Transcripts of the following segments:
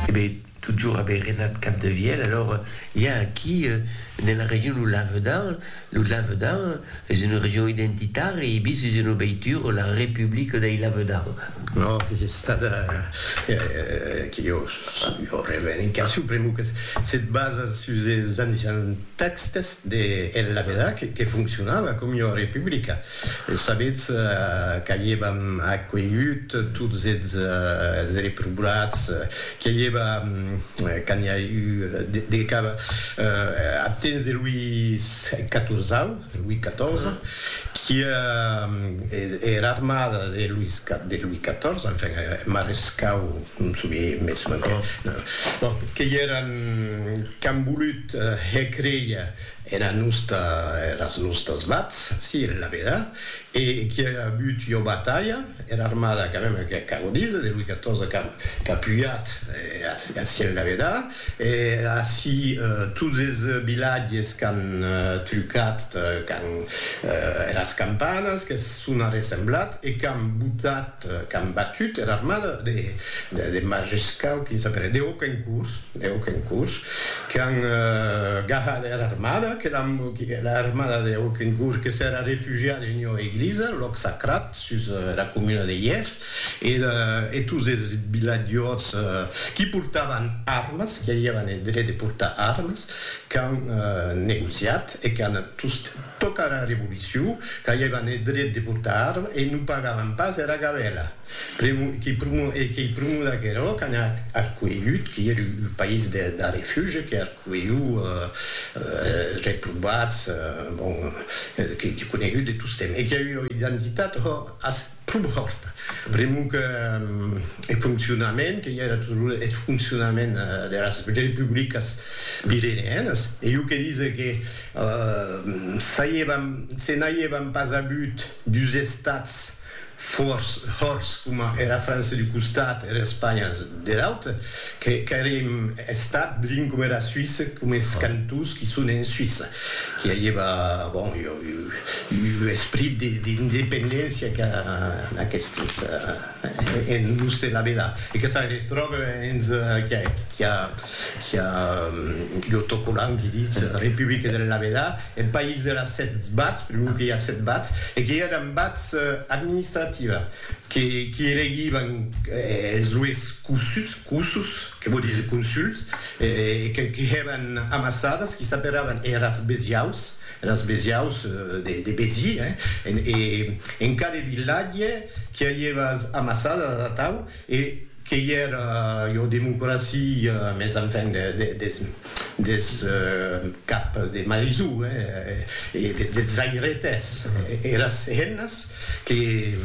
Ebe, totjorn ebe Renat Capdevièlh, alors i a aquí nela region lo Lavedan, lo Lavedan es una region identitària e bis es una veitura, la Republica dei Lavedan. No, que es estada, que jo jo revendicacion pr'amor que se basa sus es ancians tèxtes de El Lavedan que foncionava com ua republica. E sabetz qu'aievam acuelhut tots eths reprobats, que i eva, quand i a eu de cap, ath temps de Louis Catorzau, Louis Catorze, qui e era armada de Louis Catorze, enfin, marescau, non souvie mes manquè, bon, que i eran qu'an volut hècréia Era nosta, eras nostas vats, si, la veda, e qui a agut ua batalha, era armada quand même que ac ago díser, de Louis XIV qu'a qu'a pujat a si en la veda, e a si tots es vilatges qu'an trucat quand eras campanas, qu'es sona ressemblat e qu'an botat, qu'an batut era armada de Majescau, quin sap era, de Auquencourt, de Auquencourt, qu'an gahat era armada, que era armada de Auquencourt que s'era refugiada en ua eglisa, lòc sacrat, sus era comuna de Hièr, e tots es vilatjors qui portavan armas, qui aviavan eth dret de portar armas, qu'an negociat, e qu'an just tocat era revolucion, qu'aievan eth dret de portar arma e non pagavan pas era gabela. Pr'amor que pr'amor e qu'ei pr'amor d'aquerò qu'an arcuelhut, que ei un país de refugi, que arcuelhut reprobats, bon, que ei conegut de tostemp e que ei ua identitat, ho, as, Prumhòrt, pr'amor que eth foncionament, que i era toujours eth foncionament deras republicas pireneenas, e jo que dise que se n'aiévan pas avut dus estats fòrts, hòrts, coma era França d'un costat e era Espanha der aute, qu'aurem estat drin coma era Suisse, coma es cantons qui son en Suisse. I avieva, bon, un esprit d'independéncia qu'a aquestes en l'us de la vela. E que se retròbe hens qui a l'autocollant qui ditz Republica de la vela, eth país de las sèt bats, per lo que i a sèt bats, e que èran bats administrativa, qui elegivan es ues cossus, Que vò díser consuls, que hèban amassadas, qui s'aperavan eras besiaus, eras besiaus de Béziers, hein, e en cada vilatge qui a ievas amassadas atau, e que i era ua democracia, mes enfin des cap de marisú, hein, e des airetes, eras hennas que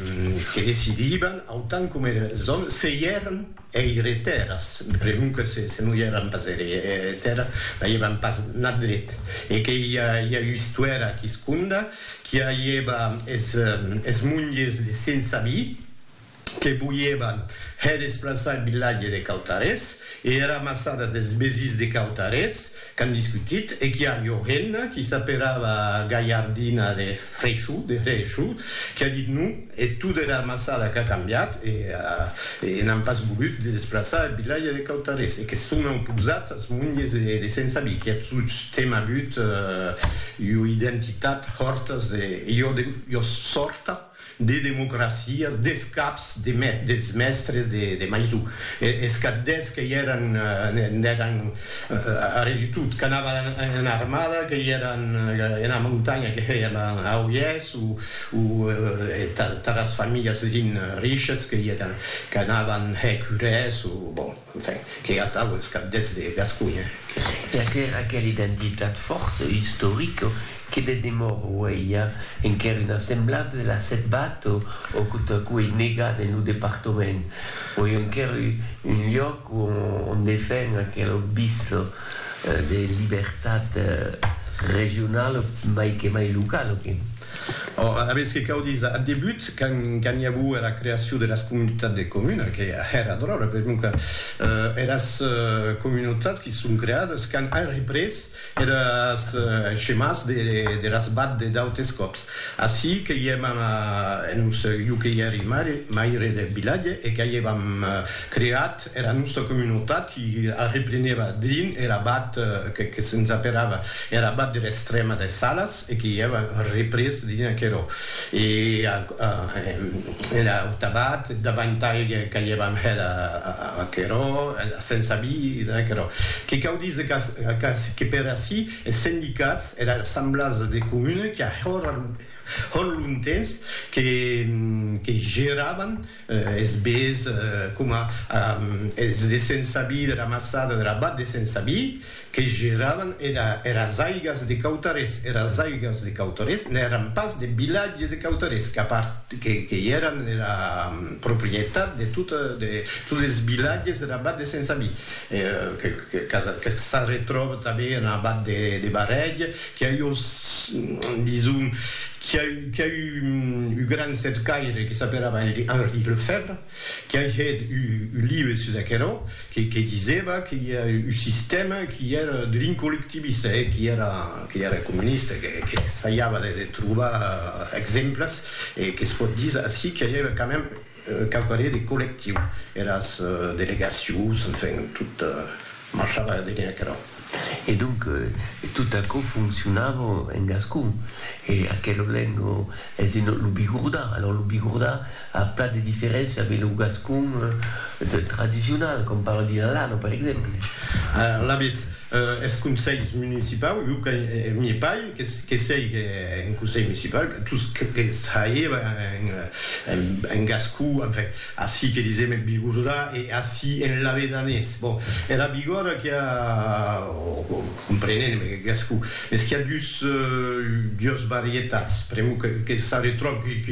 decidivan, autant coma eres òmes, se i èran Eire tèrra, segon que se non i èran pas eire tèrra, n'aièvan pas nat dret, e que i a ustuèra quisconda qui aièva es monges de Sensabí que voièvan hè desplaçar el vilatge de Cautarets e era maçada des Besís de Cautarets, Qu'an discutit e qu'i a ua hemna qui s'aperava Gaiardina de Freixu, de Hreeshu, qui a dit non e tot era amassada qu'a cambiat e e n'an pas volut de desplaçar eth vilatge de Cautarés e que son auposat as monges de Sent Sabí qui a tostemp avut ua identitat hòrtas de ua sòrta de democracias, des caps de mes, dels mèstres de, de Maisou, e, es cap des que i èran, n'èran arrè du tot, qu'anava ena armada, que i èran ena montanha, que hèiam a Oiès, o, o taras familhas rin, riches, que i èran, qu'anavan hèr curès, o, bon. Enfin, que atau es cap deths de Gasconha, que es. E aquera, aquera identitat fòrta, istorica, que de demòra auei a enquèr una semblada de la Setbat o o quo ta quo ei negat en lo departament, o ei enquèr u un lloc o on defen aquela vista de libertat regionala mai que mai locala, que. Ora, aviètz que cau díser, ath debut, quand i aguo era creacion de las comunitats de comuna, que èra dròlle, per non que eras comunautats qui son creades quand an représ eres chemàs de las bad de d'autes còps. Ací que i èm en un, jo que i èri maire deth vilatge e qu'a i èvam creat era nòsta comunautat qui arreplenèva drin er abat que que se'ns aperava er abat der Estrèma des Salas e que i èva représ drin aquerò e a er aut abat davantai qu'aievam hèt aquerò la sensa vida aquerò que cau díser qu'ac que per ací es sendicats era assemblasa de comuna qui a hòr hòr lontens que que geravan Es bés coma es de Sensabí, de la Maçada, de l'abat de Sensabí, que geravan eras aigas de Cautarés. Eras aigas de Cautarés n'èran pas de vilatges de Cautarés, que i èran era proprietat de totes es vilatges der abat de Sensabí, que s'arretròba tanben en abat de Barrèg Qu'i a jo, dison, qu'i a eu, qu'i a eu un gran cercaire que s'aperava Henri Lefèvre, qu'i a hèt un live sus aquerò, que, que disèva que i a un sistèma qu'i èra drin collectivista, e qu'i èra, qu'i èra comunista, que, que saiava de, de trobar exemples, e que's pòt díser ací qu'i a quand même Quauqu' années de collectiu, eras delegacions, enfin, tot marchava dene aquerò. E donc, tot aquò foncionava en gascon. E aquela lenga es ena, lo bigordà. Alòrs, lo bigordà a plan de diferéncia ve lo gascon tradicional, com parla Vilalano, per exemple. Alavetz, Eth conselh municipau, jo que m'ie pai, que sei que en conselh municipau, tous que saie en gascon, enfin, ací que disem en bigordà e ací en lavedanés, bon, era bigòrda qu'i a, comprenent gascon, mès qu'i a dus varietats, pr'amor que s'arretròbi,